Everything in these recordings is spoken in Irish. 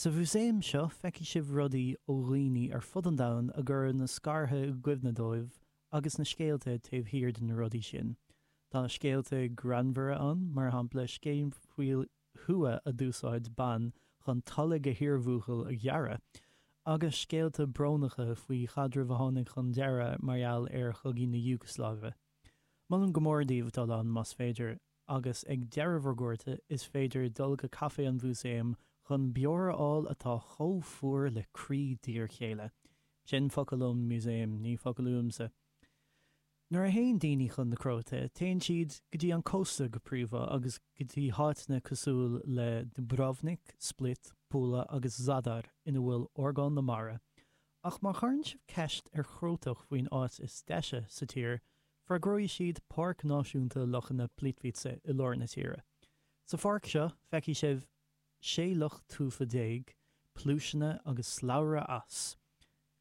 Sa mhúsaem seo feicfidh sibh rudaí ó dhaoine ar fud an domhain a gcuireadh na scartha i gcuimhne dóibh agus na scéalta taobh thiar de na rudaí sin. Tá scéalta greannmhara ann, mar shampla scéal faoi thua a d'úsáid bean chun toilg a hiarbhuachaill a ghearradh, agus scéalta brónacha faoi chaidreamh a tháinig chun deireadh mar gheall ar chogaí na hIúgslaive. Molaim go mór daoibh dul ann más féidir. agus ag deireadh bhur gcuairte is féidir dul go Caifé an Mhúsaeim chun beoir a fháil atá chomh fuar le croí d'iarchéile. Sin focal ón músaem, ní focal uaimse. Nuair a théann daoine chun na Cróite, téann siad go dtí an cósta go príomha agus go dtí háiteanna cosúil le Dubrovnik, Split, Pula agus Zadar ina bhfuil orgán na mara, ach má chuireann sibh ceist ar Chrótach faoin áit is deise sa tír, Freagróidh siad Páirc Náisiúnta Lochanna Plitvice i lár na tíre. Sa pháirc seo feicfidh sibh 16 loch tufa, pluaiseanna agus slabhra eas.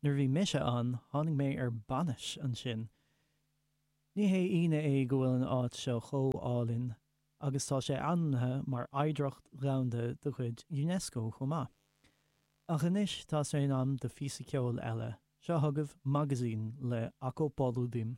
Nuair a bhí mise ann tháinig mé ar bainis ansin. Ní haon ionadh é go bhfuil an áit seo chomh álainn agus tá sé ainmnithe mar Oidhreacht Dhomhanda de chuid Unesco chomh maith. Ach anois tá sé in am do phíosa ceoil eile, seo chugaibh Magazin le Ako poludim.